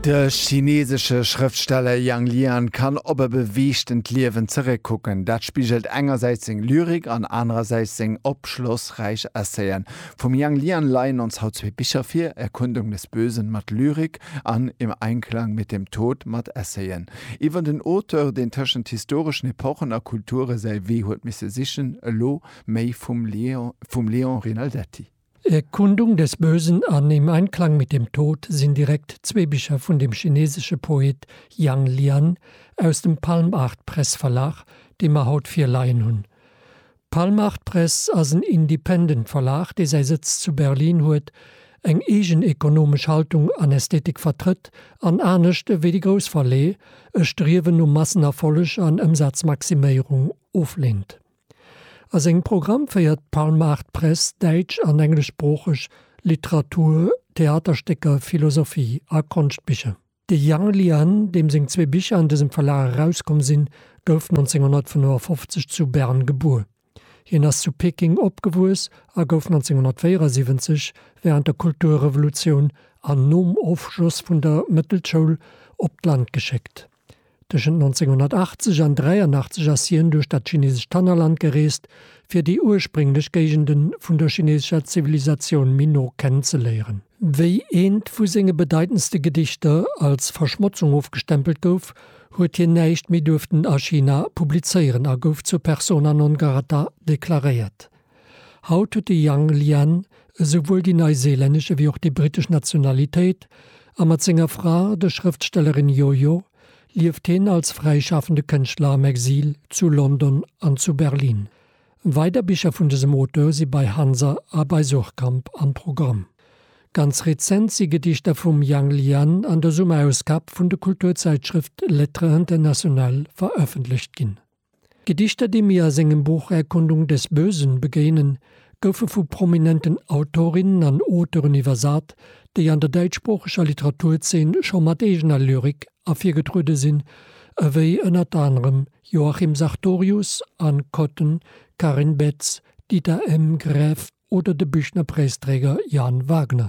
De chineesesche Schrëftsteller Yang Lian kann op e beweegtent Liewen zeréckkucken. Dat spigelt engersäits seng Lyrik an anerersäits seng opschlossräich Essaien. Vum Yang Lian leien ons haut zwee Bicher vir, Erkundung des Bösen mat Lyrik an Im Einklang mit dem Tod mat Essaien iwwer den Auteur, deen tëschent historeschen Epochen a Kulture säi Wee huet misse sichen, elo méi vum Léon Rinaldetti. Erkundung des Bösen an Im Einklang mit dem Tod sinn direkt zwee Bicher vun dem chinesesche Poet Yang Lian aus dem Palmartpress-Verlag, dee mer haut virleien hunn. D'Palmartpress ass en Independent-Verlag, dee säi Sëtz zu Berlin huet, eng eegen ekonomesch Haltung an Ästhetik vertrëtt an, anescht ewéi déi grouss Verleë, e Striewen no Massenerfolleg an Ëmsazmaximéierung oflehnt. A sengem Programm féiert d'Palmaart-Press däitsch an engleschsproocheg Literatur, Theaterstécker, Philosophie a Konschtbicher. De Yang Lian, deem seng zwee Bicher an dësem Verlag erauskomm sinn, gouf 1955 zu Bern gebuer. Hien ass zu Peking opgewuess a gouf 1974, wärend der Kulturrevolutioun an nom Ofschloss vun der Mëttelschoul, op d'Land geschéckt. Tëschent 1980 an 83 ass hien duerch dat chinesescht Tannerland gereest, fir déi ursprénglech Géigende vun der chinesescher Zivilisatioun méi no kennenzeléieren. Wéi eent vu senge bedeitendste Gedichter als Verschmotzung ofgestempelt gouf, huet hien näischt méi duerften a China publizéieren a gouf zur persona non grata deklaréiert. Haut huet de Yang Lian esouwuel déi neiseelännesch ewéi och déi brittesch Nationalitéit a mat senger Fra, der Schrëftstellerin Yoyo, lieft hien als fräischafende Kënschtler am Exil zu London an zu Berlin. Weider Bicher vun dësem Auteur si bei Hansa a bei Suhrkamp am Programm. Ganz rezent si Gedichter vum Yang Lian an der Summerausgab vun de Kulturzäitschrëft Lettres Internationales verëffentlecht ginn. D'Gedichter, déi mir a sengem Buch Erkundung des Bösen begéinen, goufe vu prominenten Autorinnen an Auteuren iwwersat, déi an der däitschsproocheger Literaturzeen scho mat eegener Lyrik ervirgetruede sinn, ewéi ënnert anerem Joachim Sartorius, Anne Kotten, Karin Betz, Dieter M. Graeff oder de Büchner-Präisträger Jan Wagner.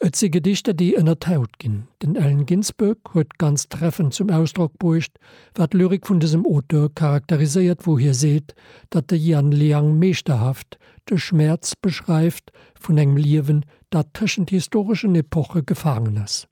Et si Gedichter, déi ënnert d'Haut ginn. Den Allen Ginsberg huet ganz treffend zum Ausdrock bruecht, wat d'Lyrik vun dësem Auteur charakteriséiert, wou hie seet, datt de Yann Liang meeschterhaft de Schmäerz beschreift vun engem Liewen, dat tëschent historeschen Epoche gefaangen ass.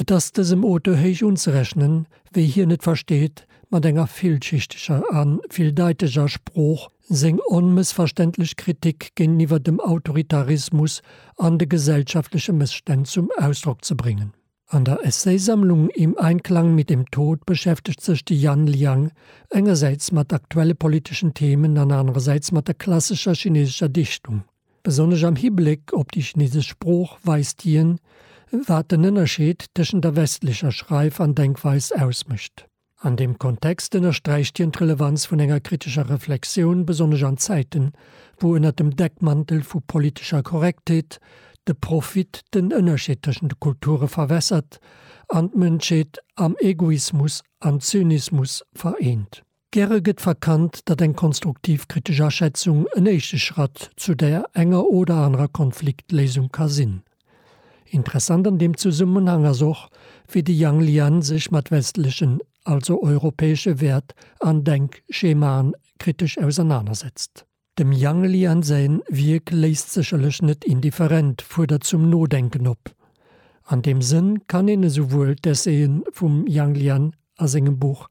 Et ass dësem Auteur héich unzerechnen, wéi hien et versteet, mat enger villschichtiger a villdeiteger Sprooch seng onmëssverständlech Kritik géinteniwwer dem Autoritarismus an de gesellschaftleche Mësstänn zum Ausdrock ze bréngen. An der Essaysammlung Im Einklang mit dem Tod beschäftegt sech de Yan Liang engersäits mat aktuelle politeschen Themen an anerersäits mat der klassescher chinesescher Dichtung. Besonnesch am Hibléck op déi chinesesch Sprooch weist hien, wat den Ënnerscheed tëschent der westlecher Schreif an Denkweis ausmécht. An deem Kontext ënnersträicht hien d'Relevanz vun enger kritescher Reflexioun, besonnesch an Zäiten, wou ënner dem Deckmantel vu politescher Korrektheet de Profit den Ënnerscheed tëschent de Kulture verwässert an d'Mënschheet am Egoismus an Zynismus vereent. Gäre gëtt verkannt, datt eng konstruktiv kritesch Aschätzung en éischte Schratt zu der enger oder anerer Konfliktléisung ka sinn. Interessant an deem Zesummenhang ass och, wéi de Yang Lian sech mat westlechen, also europäesche Wäert an Denkschemaen kritesch ausernanersetzt. Dem Yang Lian säin Wierk léisst sécherlech net indifferent, fuerdert zum Nodenken op. An deem Sënn kann een esouwuel d'Essayen vum Yang Lian a sengem Buch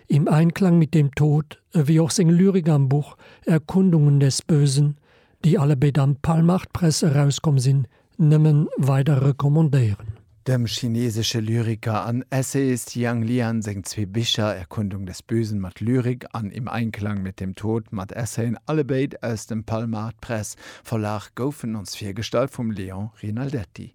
Im Einklang mit dem Tod ewéi och seng Lyrik am Buch Erkundungen des Bösen, déi allebéid am Palmach-d'Press erauskomm sinn, nëmmen weider recommandéieren. Dem chinesesche Lyriker an Essayist Yang Lian seng zwee Bicher Erkundung des Bösen mat Lyrik an Im Einklang mit dem Tod mat Essayen, allebéid aus dem Palmart Press Verlag, goufen ons virgestallt vum Léon Rinaldetti.